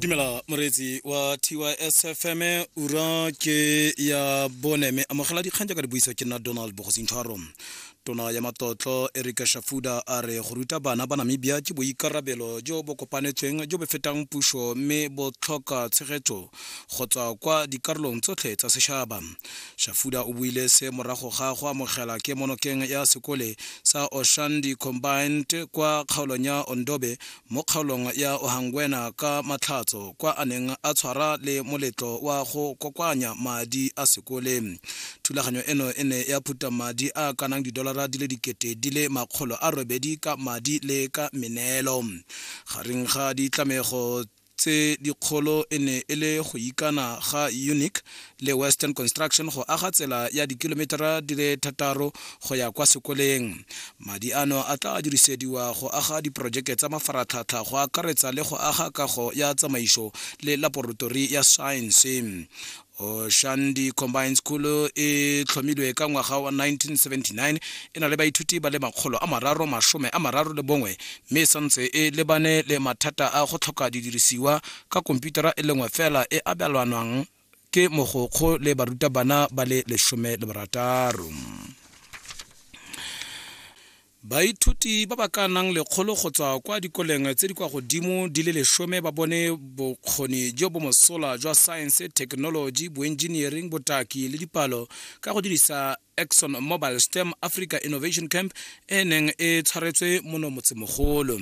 dumela moreetsi wa tysfm ura ke ya bone me amogela dikgang jaaka di buisa ke nna donald bogosintshwaro tona ya matlotlo erika shafuda a re go ruta bana ba namibia ke boikarabelo jo bo kopanetsweng jo bo fetang puso mme bo tlhoka tshegetso go tswa kwa dikarolong tsotlhe tsa sešaba shafuda o buile se morago ga go amogela ke monokeng ya sekole sa oshandi combined kwa kgaolong ya ondobe mo kgaolong ya ohangwena ka matlhatso kwa a neng a tshwara le moletlo wa go kokoanya madi a sekole thulaganyo eno e ne ya phuta madi a kanang didolara di le dikete di le makgolo a robedi ka madi le ka meneelo gareng ga ditlamego tse dikgolo e ne e le go ikana ga unic le western construction go aga tsela ya dikilometara di le thataro go ya kwa sekoleng madi ano a tla dirisediwa go aga diporojeke tsa mafaratlhatlha go akaretsa le go aga kago ya tsamaiso le laboratori ya science oshandi combine school e tlhomilwe ka ngwaga wa 1979 e na le baithuti ba le makgolo a mararo masome a mararo le bongwe mme e santse e lebane le mathata a go tlhoka didirisiwa ka komputara e lengwe fela e abelwanwang ke mogokgo le barutabana ba le lesome le barataro Baithuti ba ba ka nang lekgolo go tswa kwa dikoleng tse di kwa godimo di le lesome ba bone bokgoni jo bo mosola jwa science, technology, boengineering, botaki le dipalo ka go dirisa Exxon Mobile STEM Africa Innovation Camp e neng e tshwaretswe mono motsemogolo.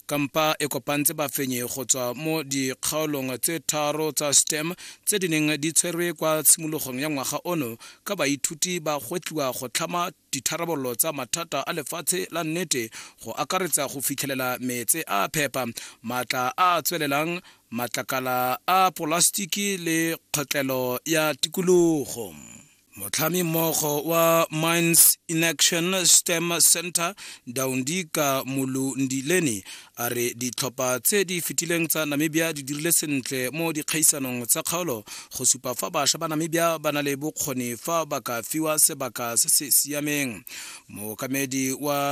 Kampa e kopantse bafenyi go tswa mo dikgaolong tse tharo tsa STEM tse di neng di tshwerwe kwa tshimologong ya ngwaga ono ka baithuti ba gwetlhiwa go tlhama ditharabololo tsa mathata a lefatshe la nnete go akaretsa go fitlhelela meetse a phepa, maatla a a tswelelang, matlakala a polasitiki le kgotlelo ya tikologo. Motlhami mmogo wa Mines in Action STEM Center, Daundika Mulundileni, a re ditlhopha tse di fetileng tsa namibia di dirile sentle mo dikgaisanong tsa kgaolo go supa fa bašwa ba namibia ba na le bokgoni fa ba ka fiwa sebaka se se siameng mookamedi wa